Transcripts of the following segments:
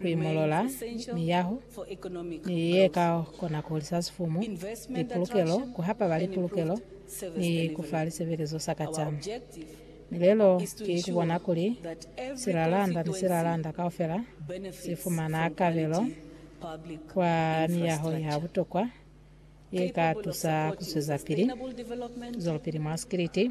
ku imolola miyaho ni ye ka kona ku hulisa sifumu, lipulukelo, ku hapa ba lipulukelo, ni ku fa lisebelezo sa kacwalo. Milelo ki ku bona kuli silalanda ni silalanda kaufela si fumana kabelo kwa miyaho ya butokwa ye ka tusa ku zwezapili zwelopili mwa sikiliti,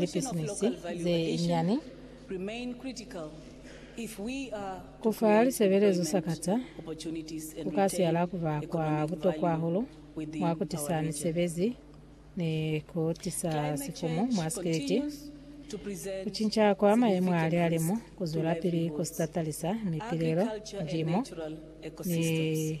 lipisinisi ze nyani, ku fa lisebelezo sakata ku ka siyala ku ba kwa butokwa hahulu mwa ku tisa misebezi ni ku tisa sifumu mwa sikiliti. Ku cinca kwa mayemo a lihalimu ku zwelapili ku si tatalisa mipilelo, ndimo, ni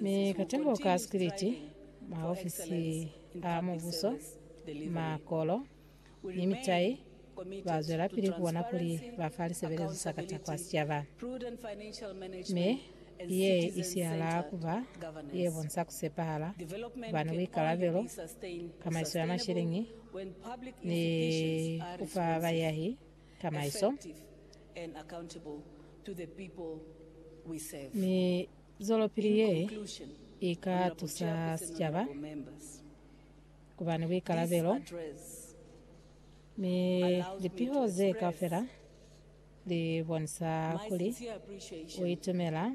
Mi katembo ka sikiliti, maofisi a mubuso, makolo, ni mitai ba zwelapili ku bona kuli ba fa lisebelezo sa kata kwa sicaba. Mi ye i sihala ku ba ye bonsa ku sepahala, ku ba ni buikalabelo, kamaiso ya mashiliñi, ni ku fa bayahi tamaiso, mi zwelopili ye i ka tusa sicaba ku ba ni buikalabelo, mi lipiho ze kaufela li bonisa kuli u itumela.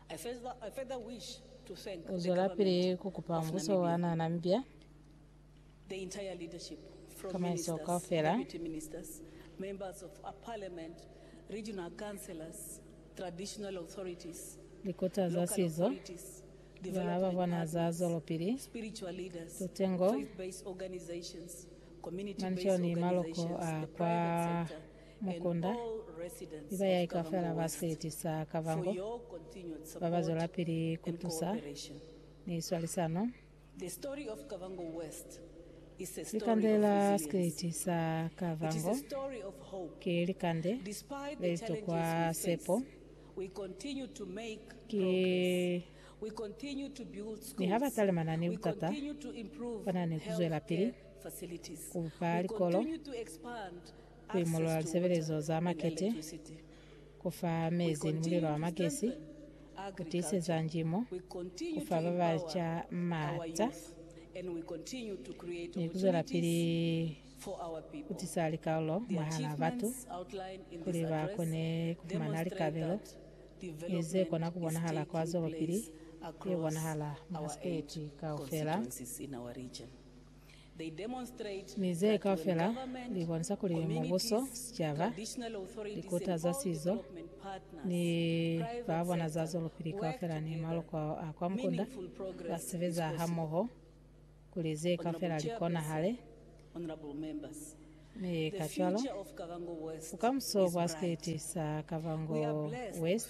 U zwelapili ku kupa mbuso wa nana mbya tsamaiso kaufela, likota za sizo, ba ba bona za zwelopili, tutengo, manzho ni maloko a kwa Mukunda, iba ya ika fela ba seti sa Kavango ba ba zwelapili ku tusa ni swalisano. Likande la seti sa Kavango ki likande le li tokwa sepo. Ki ni ha ba talimana ni butata, ba na ni ku zwelapili ku bupa likolo. ku imolola lisebelezo za makete, ku fa mezi ni mulilo wa magesi, ku tiiseza njimo, ku fa ba baca maata, ni ku zwelapili ku tisa likalolo mwahal'a batu kuli ba kone ku fumana likabelo ni ze kona ku bonahala kwa zwelopili ye bonahala mwa siteti kaufela. Mi ze kaufela li bonisa kuli mubuso, sicaba, likuta za sizo, ni ba bona za zwelopili kaufela ni maloko a kwa mukunda ba sebeza hamoho kuli ze kaufela li konahale. Mi kacwalo, bukamuso bwa sikiliti sa Kavango West,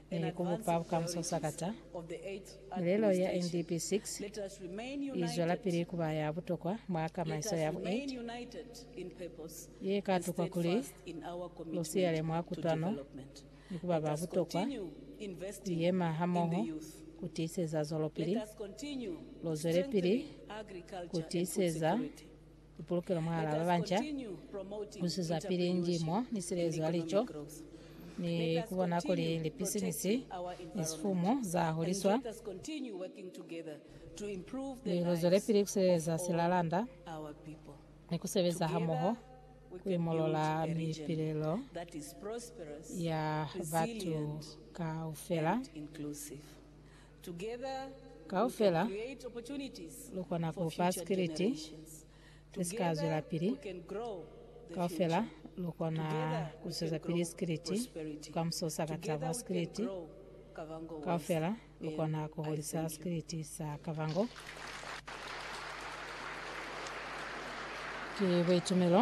ni ku mupa bukamuso sakata, milelo ya NDP 6 i zwelapili ku ba ya butokwa mwa kamaiso ya bu 8 ye ka tukwa kuli lu siyale mwa kutwano ni ku ba ba butokwa ku yema hamoho ku tiiseza zwelopili. Lu zwelepili ku tiiseza Ipulukelo mwahal'a babanca, kuswezapili ndimo ni silezo ya lico, ni kubona kuli lipisinisi ni sifumu za huliswa. Ni luzwelepili kusileleza silalanda ni kusebeza hamoho kuimolola mipilelo ya batu kaufela. Kaufela lu kona ku fa sikiliti se si ka zwelapili. Kaufela lu kona ku zwezapili sikiliti bukamuso sa ka tabo. Sikiliti kaufela lu kona ku hulisa sikiliti sa Kavango. Ki buitumelo